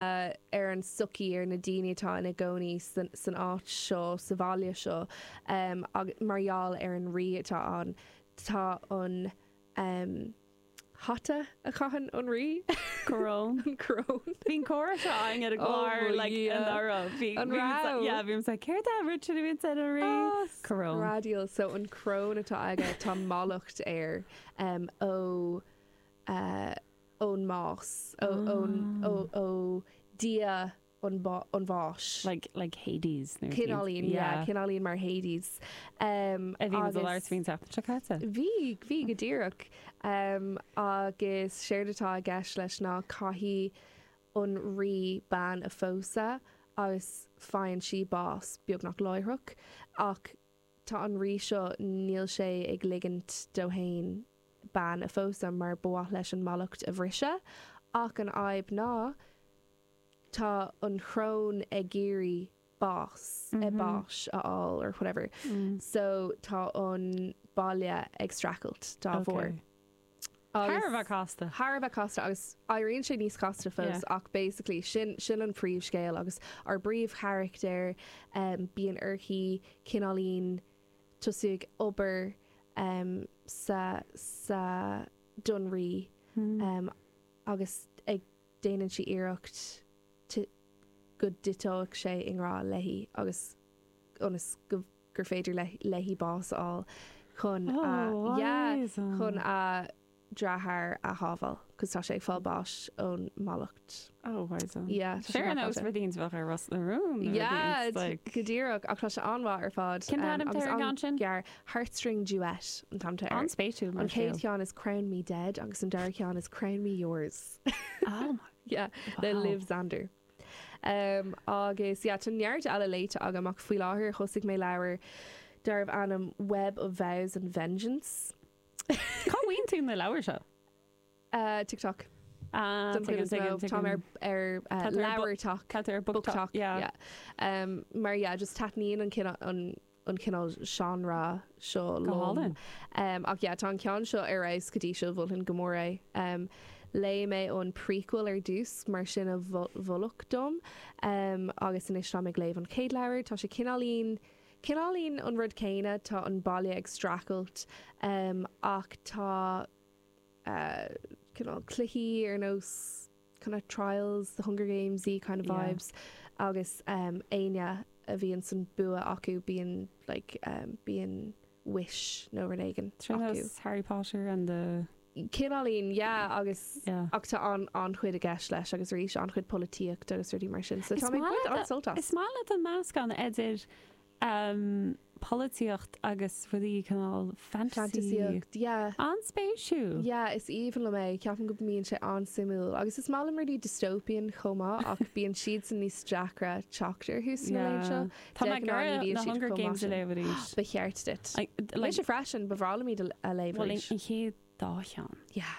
ar an tsochaí, ar na daoine atá ina gcónaí san áit seo, sa bhaile seo agus mar gheall ar an rí atá ann. Tá an hata a chaitheann an rí, coróin, an choróin. Bhí an comhrá seo againn ar an gclár anuraidh. Bhí. An raibh? Yeah, bhí mise like, céard é an rud a bhíonn ar an rí? Coróin. Tá screadaíl. So an coróin atá aige, tá mallacht air em ó. ón mbás, ó, ón, ó, ó Dhia an, an bháis. Like, like Hades nó. Cineáilín, yeah, cineáilín mar Hades. A bhí muid ag labhairt faoi an tseachtain seo caite. Bhí, bhí go díreach. Agus séard atá i gceist leis ná caithfidh an rí bean a phósadh agus faigheann sí bás beagnach láithreach ach tá an rí seo, níl sé ag ligint dó fhéin bean a phósadh mar ba mhaith leis an mallacht a bhriseadh ach an fhadhb ná tá an choróin ag iarraidh bás, eh báis, a fháil or whatever so tá an baile ag streachailt dá bharr. Okay. Thar a bheith casta. Thar a bheith casta agus éiríonn sé níos casta fós ach basically sin, sin an príomhscéal agus ár bpríomhcharachtar bíonn uirthi cineáilín tosú ag obair em sa, sa Dún Rí agus ag, déanann sí iarracht go dtiteoidh sé i ngrá léi agus ionas go, gur féidir léi bás a fháil chun, yeah, chun a deartháir a shábháil cause tá sé ag fáil báis ón mallacht. Oh, wow, so. Yeah, tá sé Sure, no, it's really into bheith ar Ros na Rún. Yeah, like... go díreach, ach tá sé an-mhaith ar fad. Cin um, agus an gan sin? Gear, Heartstring Duet, an t-ainm atá air. An-spéisiúil. An chéad cheann is Crown Me Dead, agus an dara ceann is Crown Me Yours. Oh, my. Yeah, wow. le Liv Zander. Ehm, agus yeah, tá neart eile léite agam ach faoi láthair thosaigh mé leabhar darbh ainm Web of Vows and Vengeance. Cá bhfaigheann tú na leabhair seo? Uh, TikTok. Ah, Don chuid is mó, táim ar, ar uh, leabhar talk. Tá ar book, book talk. talk. Yeah. yeah. Um, mar yeah, just taitníonn an, an an cineál seánra seo liom. Go hálainn. Em, ach yeah, tá an ceann seo ar fheabhas go dtí seo, mholfainn go mór é. Em, léigh mé an prequel ar dtús mar sin a mhol, moladh dom. Em, agus anois táim ag léamh an chéad leabhar, tá sé cineáilín, cineáilín an rud céanna, tá an baile ag streachailt, em, ach tá, eh, cineál cluichí ar nós, kind of trials, the Hunger Gamesy kind of vibes agus éinne a bhíonn san bua acu bíonn like bíonn wish nó rud éigin acu. Sin as Harry Potter and the. Cineál yeah agus ach tá an-chuid i gceist leis agus arís an-chuid polaitíocht agus rudaí mar sin so tá mé ag baint an-sult as. Is maith leat do mheascán idir Am, polaitíocht agus rudaí cineál fantasy. Fantaisíocht, yeah. An-spéisiúil! Yeah, is aoibhinn liom é, ceapaim go mbíonn sé an-suimiúil. Agus is maith liom rudaí dystopian chomh maith ach bíonn siadsan níos deacra teacht orthu sna laethanta seo. Yeah. De ghnáth ní bhíonn siad chomh maith sin. Tá mé ag iarraidh na Hunger Games a léamh arís. Ba cheart duit. I, like. Mise freisin, ba bhreá liom iad a léamh arís. Bhuel, an chéad dá cheann. Yeah.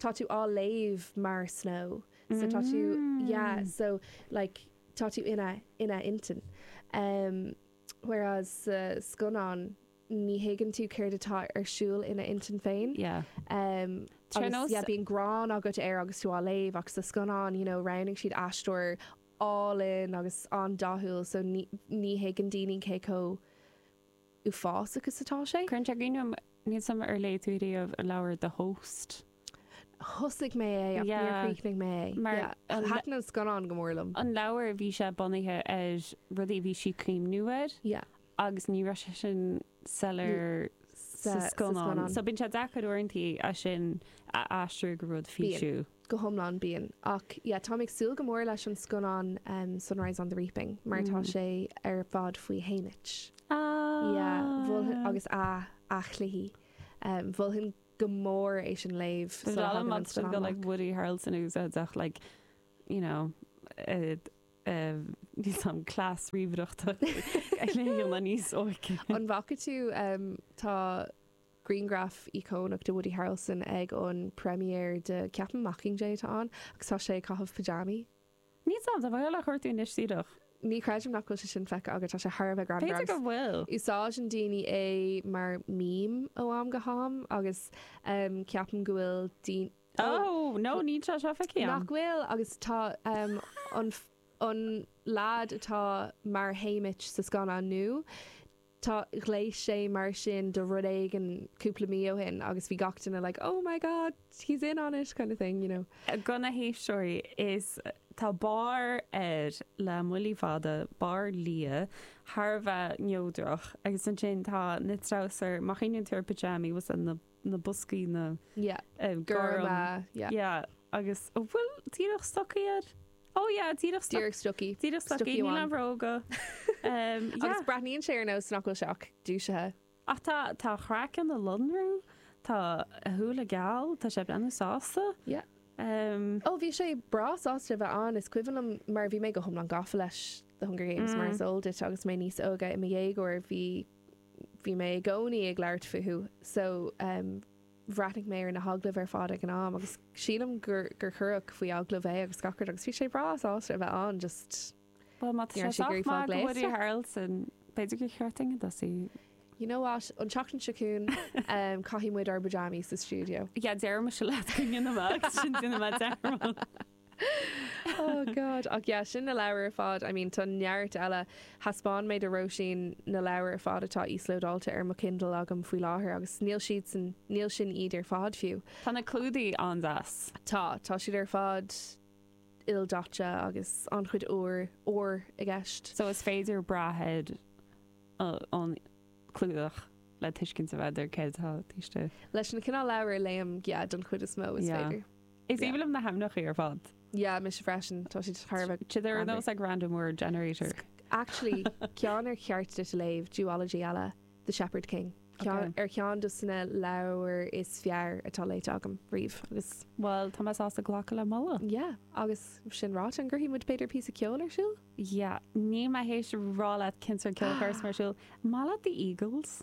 tá tú á léamh mar Snow so tá tú yeah Mm. so like tá tú ina ina intinn em whereas sa scannán ní thuigeann tú céard atá ar siúl ina intinn féin Yeah. em agus yeah bíonn gráin agat air agus tú á léamh ach sa scannán you know roghnaigh siad aisteoir álainn agus an-dathúil so ní ní thuigeann daoine cé chomh uafásach is atá sé. Cuireann sé ionadh orm, níl suim Ar léigh tú riamh an leabhar The Host? Thosaigh mé é ach níor chríochnaigh mé é. Thaitin an scannán go mór liom. An leabhar, bhí sé bunaithe ar rudaí a bhí sí ag cuimhniú air agus ní raibh sé sin soiléir sa scannán. So bíonn sé deacair uaireanta é sin a aistriú go rud físiúil. go hiomlán, bíonn. Ach yeah, táim ag súil go mór leis an scannán Sunrise on the Reaping mar tá sé ar fad faoi Haymitch. Yeah, mholfainn agus a chluichí. Mholfainn go mór é sin a léamh sula dtagann an scannán amach. Tá sé iontach go like Woody Harrelson a úsáid ach like, you know, níl some class ríomhaireachta ag déanamh é níos óige. An bhfaca tú tá. Grianghraf íocónach de Woody Harrelson ag an premiere de ceapaim Mockingjay atá ann agus tá sé ag caitheamh pajamaí. Ní sam, tá Viola Chortúin anois saorach. Ní chreidim nach bhfuil sé sin feicthe agat, tá sé thar a bheith greannmhar. B'fhéidir go bhfuil. Agus úsáideann daoine é mar meme ó am go ham agus em ceapaim go bhfuil daoine oh Oh no, níl sé seo feicthe agam. nach bhfuil agus tá em an an lad atá mar Haymitch sa scannán nua, Tá, ghléas sé mar sin do rud éigin cúpla mí ó shin agus bhí gach duine like oh my god he's in on it kind of thing you know. Do na héisteoirí, is tá barr air le muinchillí fada, barr liath, thar a bheith neodrach agus ansin tá na treabhsair, má chuimhníonn tú ar phajamaí, was that na. na boscaí na yeah gorm yeah yeah agus ó bhfuil díreach stocaí air? ó yeah díreach stocaí díreach stocaí díreach stocaí níl aon bhróga ehm yeah agus breathnaíonn sé ar nós nach bhfuil sé ach dúisithe. Ach tá tá craiceann ag lonrú tá a shúile geal tá sé ag breathnú sásta yeah ehm. Ó bhí sé breá sásta a bheith ann is cuimhin liom mar bhí mé go hiomlán gafa leis The Hunger Games mar is eol duit agus mé níos óige i mo dhéagóir bhí bhí mé i gcónaí ag labhairt fúthu so em bhreathnaigh mé ar na hagallaimh ar fad ag an am agus sílim gur gur cuireadh faoi agallamh é agus gach rud agus bhí sé breá sásta a bheith ann just Bhuel má tá ní sé raibh sé ag sách iarraidh fáil maith go Woody gléasta. Harrelson, b'fhéidir gur cheart ding a dtosaí. You know what? An tseachtain seo chugainn em caithfidh muid ár bpajamis sa stiúideo. Yeah deireadh mise leat go nginfeadh mé agus sin déanfaidh mé dearmad. Oh God. Ach yeah, sin na leabhair ar fad. I mean, tá neart eile. Thaispeáin mé do Róisín na leabhair ar fad atá íoslódáilte ar mo Kindle agam faoi láthair agus níl siadsan, níl sin iad ar fad fiú. Tá na clúdaigh an-deas. Tá, tá siad ar fad ildaite agus an-chuid óir, ór i gceist. So is féidir breathnú ar an gclúdach le tuiscint a fháil ar céard atá istigh. Leis na cineál leabhair a léim, yeah, don chuid is mó, is féidir. Is aoibhinn liom na hainmneachaí ar fad. yeah mise freisin, tá siad thar a bheith T they're ar greannmhar. nós like random word generator. Actually, ceann ar cheart duit a léamh, duology eile, The Shepherd King, ceann Okay. ar cheann de na leabhair is fearr atá léite agam riamh agus, Bhuel, tá mé sásta glacadh le moladh. yeah, agus sin ráite, an gcuirfidh muid b'fhéidir píosa ceoil ar siúl? Yeah, níl mé tar éis rá leat cén sórt ceoil a chur ar siúl. Maith leat The Eagles?